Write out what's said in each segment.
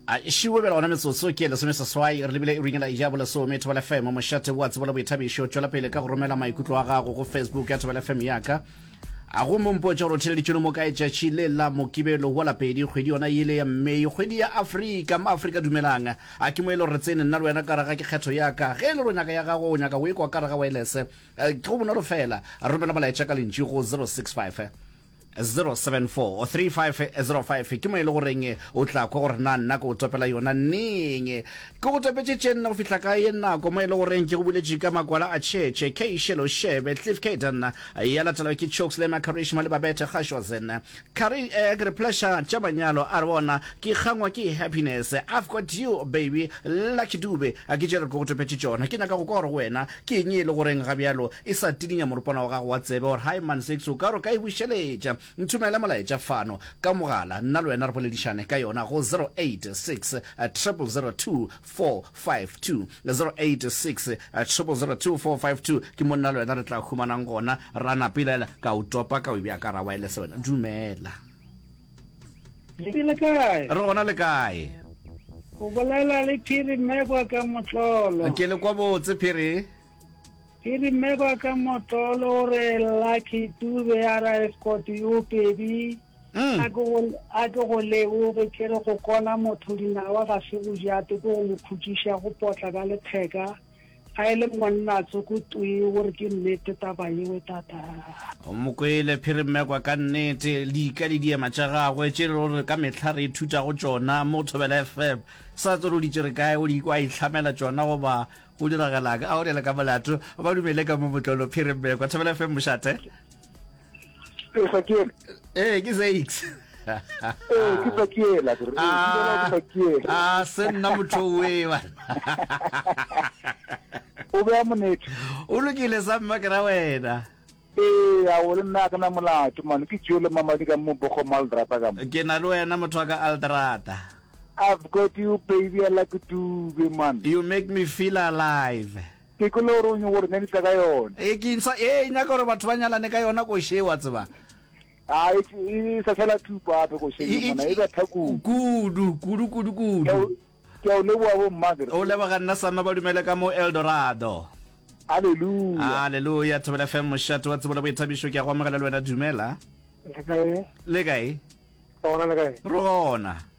a šiwe bjale gona metsotso ke lesome seswai re lebile iring la ija bo lesome thobela fm mošate wa tsebo le boithabišo tšwela pele ka go romela maikutlo a gago go facebook ya thobela fm yaka a go mompotša gore o theleditšone mo kae tšatši le la mokibelo wa lapedi kgwedi yona yele ya mmei kgwedi ya afrika ma afrika dumelang a ke mo e le gore tsene nna le wena ka raga ke kgetho yaka ge e le gore o nyaka ya gago o nyaka o e kwa ka raga waelese eh, ke go bonolo fela romela molaetša ka lentši go 065 074-3505 ke mo e le goreng o tla kwa gore na nna ke o topela yona neng ke go topetše tše nne go fihla ka ye nako mo e le goreng ke go buletše ka makwala a tšhetše k shelo shebe cliff caden ya latelwa ke chokes le macarish mo le babete gashozen kari eh, ke re pleasure tša manyalo a re bona ke kgangwa ke happiness i've got you baby lucky dube a ke tše re ke go topetše tšona ke nyaka go kwa gore go wena Ke eng ye e le goreng ga bjalo e sa tidinya moropana wa gago wa tsebe? Or, Hi, Man Six, o ka re o ka e bušeletša? Nthomele molaetša fano ka mogala, nna le wena re boledišane ka yona go 086 002452. 086 002452 ke mo nna le wena re tla humanang gona. Ra napelela, ka o topa, ka o bea ka ra waelese. Wena dumela. Le be le kae? Re gona le kae? O bolela le Phiri Mmekwa ka Motlolo. Ke le kwa botse, Phiri. Phiri Mmekwa ka Motlolo o re Lucky Dube a ra escort yo pedi. Mm. A ke go a ke go leboge ke re go kona motho dinawa ga se bojate ke go mo khutšiša go potla ka letheka. Ga e le monna a tsoko twi o re ke nnete taba yewe tata. Mo kwele Phirimmekwa ka nnete, lika le diema tša gagwe tše e lego gore ka mehla re ithuta go tšona mo Thobela FM. Sa tsebe o di tšere kae, o di kwa a ihlamela tšona goba go diragala'ng? A o rele ka molato, ba dumele ka mo motlolo Phirimmekwa. Thobela FM mošate. Ezekiel. Eh, ke Zex. Eh, ke Zakiela. Eh, ah, ah, se nna motho we ba. O be a monete. O lokile sa mma ke ra wena. ee a o le nna ke na molato mane ke tšeo le mamadi ka mobogo mo aldrata ka ke na le wena motho wa ka aldrata i've got you baby i like dube man you make me feel alive Ke kolorong gore ne ke tla ka yona. Ee, ke ntshwa ye e nyaka gore batho ba nyalane ka yona koše ye, wa tseba. A e sa tshela thupa gape koše ye mona, e ba tha kudu. Kudu, kudu, kudu, kudu. Ke a o leboga bomma. Ke re. O leboga nna Sama ba dumele ka mo Eldorado. Aleluya. Aleluya, Thobela FM mošate wa tsebo le boithabišo, ke a go amogela le wena, dumela. Le kae? Le kae? Gona le kae? Re gona.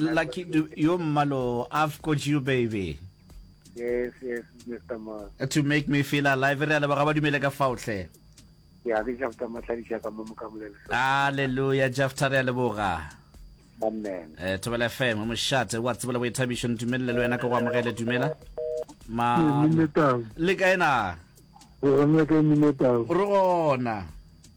Lucky Dube, yo mmalo, I've got you baby. Yes, yes, Mr. Ma. To make me feel alive, re a leboga ba dumele ka fao hle. Ya ke Jafta Matladiša ka mo mokamolela. Hallelujah, Jafta re a leboga. Amen. Eh, Thobela FM, mošate, wa tsebela boithabišo, ntumelele le wena ke go amogele, dumela. Ma, Minetau. le kae na? Go gona ka Minetau. Re gona.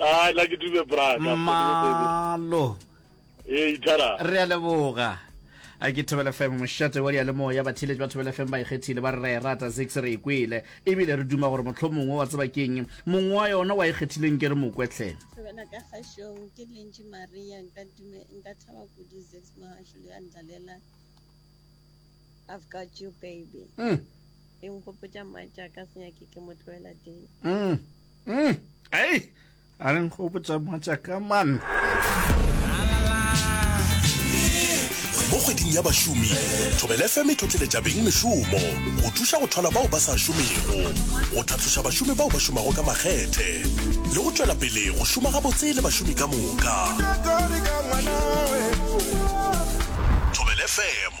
Ah, la ke dube bra. Malo. E eh, itara. Re a leboga. a ke thobela fm mošate wa diyalemoya batheletši ba thobela fm ba ikgethile ba re ra e rata zix re e kwele ebile re duma gore motlho mongwe wa tseba keng mongwe wa yona wa ikgethileng ke re mokwetlhe thobela ka kgašong ke lentši maria nka thaba kudu zix mohasho le a ndlalela I've got you baby mm. e nkgopotša matša ka senyake ke mo tloela teng mm. mm. ei a re nkgopotša matša ka man mo kgweding ya bašomi thobele fm e tlotleletša beng mešomo go thuša go thola bao ba sa šomego go tlhatloša bašomi bao ba šomago ka makgethe le go tšwela pele go šoma gabotse le bašomi ka moka thobele fm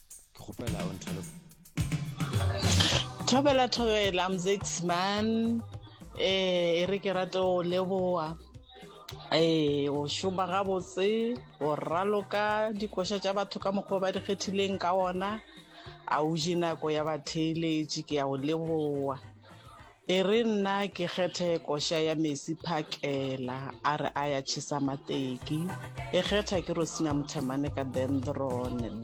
ke kgopela o nthole thobela thobela mzex man eh e re ke rate o leboa ee o šoma gabotse o raloka dikoša tša batho ka mokgwa ba di kgethileng ka ona a o je nako ya batheeletše ke ya o leboa e re nna ke kgethe koša ya mesi phakela a re a ya chesa mateki e kgetha ke rosina mothemane ka dendron